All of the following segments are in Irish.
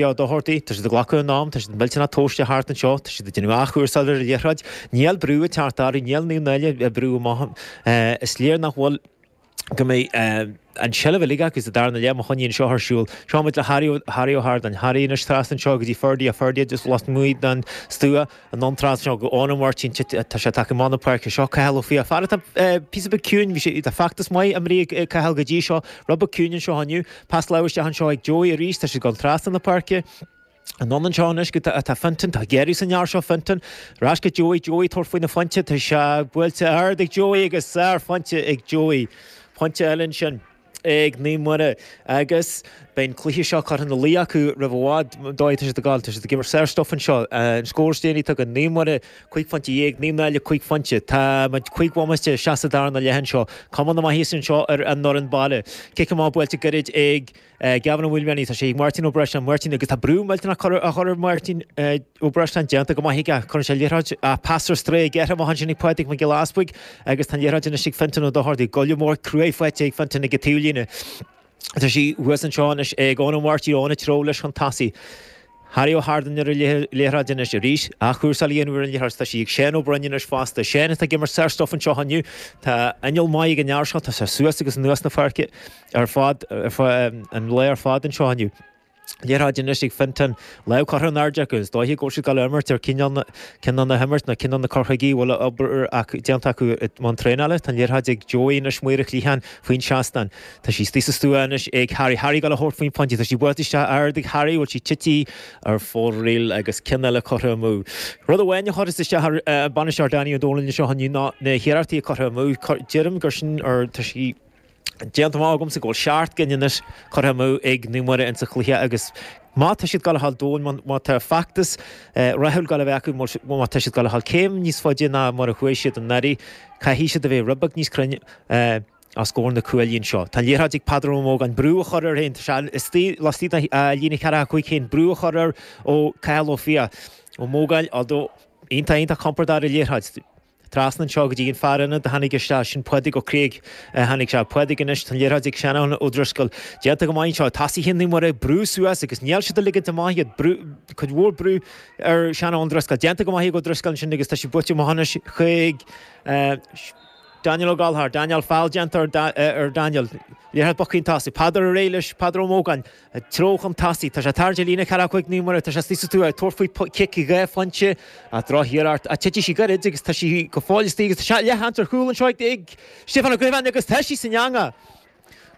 Ó Dochartaigh, Tá siad ag glacadh a n-am, tá siad millteanach tomhaiste thart anseo, tá siad ag déanamh athchúrsáil ar an liathróid. Níl brú ag teacht orthu, níl Naomh Náille ag brú amach. Is léir nach bhfuil, go mbeidh an seilbh uilig acu sa darna leath agus má choinníonn seo ar siúl. Seo muid le Harry Ó hArdáin. Harry, anois trasna anseo go dtí Ferdie. Ferdie, just lasmuigh den stua. an iontráil seo go Eoin Ó Máirtín atá tagtha chun na páirce. Seo Cathal Ó Fiaich. Fear atá píosa beag ciúin. Bhí sé, tá feachtas maith imeartha ag Cathal go dtí seo. Rud beag ciúin anseo inniu. Pas láimhe isteach anseo ag Joey arís. Tá siad ag gabháil trasna na páirce. Anonn anseo anois go dtí Fintan, tá Gerry san leabhar seo Fintan. Ar ais go Joey, Joey ag tabhairt faoin phointe, tá sé buailte ard ag Joey agus sárphointe ag Joey. Pointe eile ansin. ag Naomh Muire agus beidh an cluiche seo curtha ina luí acu roimh i bhfad. Ar ndóigh, tá siad ag tá siad ag imirt sárstuif anseo. An scór is déanaí, tá ag Naomh Muire cúig phointe dhéag, Naomh Náille cúig phointe. Tá muid cúig bhomaite isteach sa darna leath anseo. Cuma na maitheasa anseo ar an fhoireann baile. Cic amach buailte gairid ag Gavin Ó Maoilmhianaigh. Tá sé ag Máirtín Ó Breisleáin. Máirtín agus tá brú millteanach á chur ar Mháirtín. Uberscan déanta go maith aige. Cuireann sé liathróid pas ar strae curtha amach ansin ag Pádraig Mac Giolla Easbuig agus tá an liathróid anois ag Fintan Ó Dochartaigh. Gualainn mhór cruaidh faighte ag Fintan ag an taobh líne. Tá sí thuas anseo anois ag Eoin Ó Máirtín. Eoin ag treabhadh leis chun tosaigh. Harry Ó hArdáin ar an liathróid anois. Arís athchúrsáil á dhéanamh ar an liathróid. Tá sí ag Shane Ó Broin anois fosta. Shane atá ag imirt sárstuif anseo inniu. Tá inneall maith ag an fhear seo. Tá sé suas agus anuas na páirce ar fad, an lae ar fad anseo inniu. Liathróid anois ag Fintan. Lámh curtha in airde acu. Is dóiche go bhfuil siad ag dul a imirt ar cineál na himeartha nó cineál na cur chuige a bhfuil obair déanta acu i mbun traenála. Tá an liathróid ag Joey anois, Maora Chliatháin, faoin seastán. Tá sí istigh sa stua anois ag Harry. Harry ag dul a thabhairt faoin phointe. Tá sí buailte isteach ard ag Harry, bhuel sí tite ar fóraoil agus ceann eile curtha amú. Rud amháin a chuirfeas isteach ar an bainisteoir Danny Ó Donaill anseo inniu ná na hiarrachtaí curtha amú. Deirim gur sin, tá sí, Déanta amach agamsa go bhfuil seacht gcinn anois curtha amú ag Naomh Muire insa chluiche agus má tá siad ag dul a ghabháil chun cinn, má tá feachtas rathúil ag dul a bheith acu, má tá siad ag dul a ghabháil céim níos faide ná mar a chuaigh siad anuraidh, caithfidh siad a bheith rud beag níos cruinne os comhair na cuaillí anseo. Tá an liathróid ag Peadar Ó Mógáin brú á chur air féin, tá sé istigh laistigh de líne ceithre acu féin, brú á chur air ag Cathal Ó Fiaich. Ó Mógáin, although, iontach, iontach compordach ar an liathróid. Trasna anseo go dtí an fear ionad a tháinig isteach, sin Pádraig Ó Creag. Tháinig sé. Pádraig anois, tá an liathróid ag Seanán Ó Drisceoil. Déanta go maith anseo. Tosaithe Naomh Muire ag brú suas agus níl siad ag ligint amach iad. Brú, cuid mhór brú ar Seanán Ó Drisceoil. Déanta go maith ag Ó Drisceoil ansin agus tá sé buailte amach anois chuig Daniel Ó Gallchóir. Daniel, feall déanta ar Daniel. Liathróid bogtha chun tosaigh. Peadar réidh leis, Peadar Ó Mógáin. Treo chun tosaigh. Tá sé tarraingt ar líne ceathracha cúig Naomh Muire, tá sé suas is tú ag tabhairt faoi chic dhá phointe a' dtreo thiar ort. Titfidh sí gairid agus tá sí go fóill istigh agus tá shot leathchanta ar chúl anseo ag Stiofán Ó Grifín agus tá sí san eangach.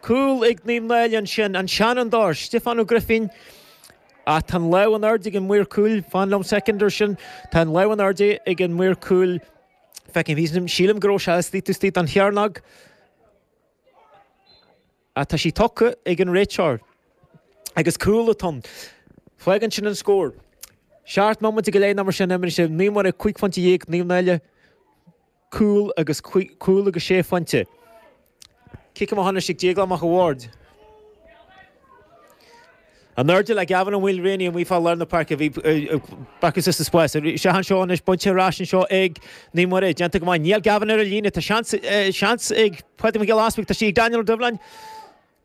Cúl ag Naomh Náille ansin, an seanfhondúir Stiofán Ó Grifín. Ach tá an lámh in airde ag an maor cúil, fan liom soicind ar sin, tá an lámh in airde ag an maor cúil, feicim thíos, sílim go raibh sé istigh istigh sa chearnóg. Tá sí tugtha ag an réiteoir agus cúl atá ann. Fágann sin an scór. Seacht mbomaite go leith nó mar sin imriste. Naomh Muire, cúig phointe dhéag, Naomh Náille, cúl agus cúl agus sé phointe. Cic amach anois ag Déaglán Mac a' Bhaird. In airde le Gavin Mulreany amuigh fá lár na páirce? Bhí Barker sos is spás. Seo an seó anois, bainte ar ais anseo ag Naomh Muire. Déanta go maith. Níl Gavin ar an líne. Tá seans ag Pádraig Mac Giolla Easpaig. Tá sí ag Daniel Ó Doibhleáin.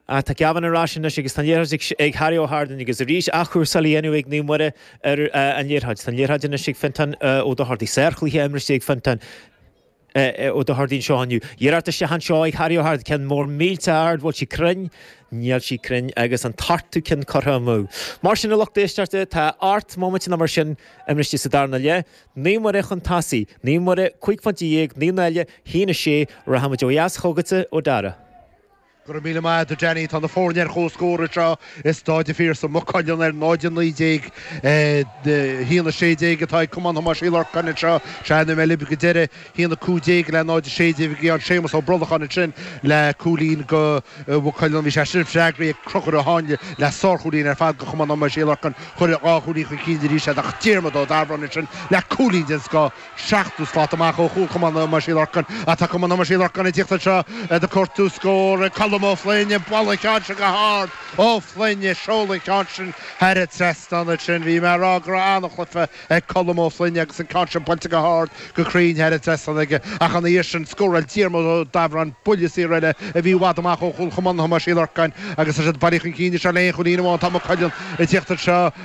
Ach tá Gavin ar ais anois agus tá an liathróid ag Harry Ó hArdain agus arís athchúrsáil á dhéanamh ag Naomh Muire ar an liathróid. Tá an liathróid anois ag Fintan Ó Dochartaigh. Sárchluiche imriste ag Fintan. Ó Dochartaigh anseo inniu. Iarracht isteach anseo ag Harry Ó hArdain, ceann mór millteanach ard, bhfuil sí cruinn? Níl sí cruinn agus an t-ochtú cionn curtha amú. Mar sin, a lucht éisteachta, tá ocht mbomaite nó mar sin imriste sa darna leath. Naomh Muire chun tosaigh. Naomh Muire, cúig phointe dhéag, Naomh Náille, a haon, a sé. Rachaimid ó dheas chugatsa, a Mhac Dara. Go raibh míle maith agat, Danny. Tá na foirne ar chomhscór anseo i Staid an Phiarsaigh, Maigh Cuilinn ar 0-19, 1-16 atá ag Cumann Thomáis Uí Lorcáin anseo. Ó bhí mé libh go deireadh, 1-15 le 0-16 a bhí ann. Séamus Ó Brolacháin ansin le cúilín go Mhaigh Cuilinn. Bhí sé sin freagraithe ag Conchúr a tháinig le sárchúilín ar fad go Chumann Thomáis Uí Lorcáin. Chuir dhá chúilín chun cinn arís iad. Diarmaid Ó Dabhráin ansin le cúilín den scoth. 70 slat amach ó chúl Chumann Thomáis Uí Lorcáin. Tá Cumann Thomáis Uí Lorcáin ag tíocht anseo ag cuartú scór. Colm Ó Floinn ag bualadh an cheann sin go hard. Ó Floinn ag seoladh an cheann sin thar an trasnán ansin. Bhí mé a' rá go raibh an-chluife ag Colm Ó Floinn agus an ceann sin buailte go hard go cruinn thar an trasnán aige. Ach ina dhiaidh sin scóráil Diarmaid Ó Dabhráin buille saor eile a bhí i bhfad amach ó chúl Chumann Thomáis Uí Lorcáin agus tá siad bailithe chun cinn anseo le aon chúilín amháin. Tá Maigh Cuilinn ag tíocht anseo.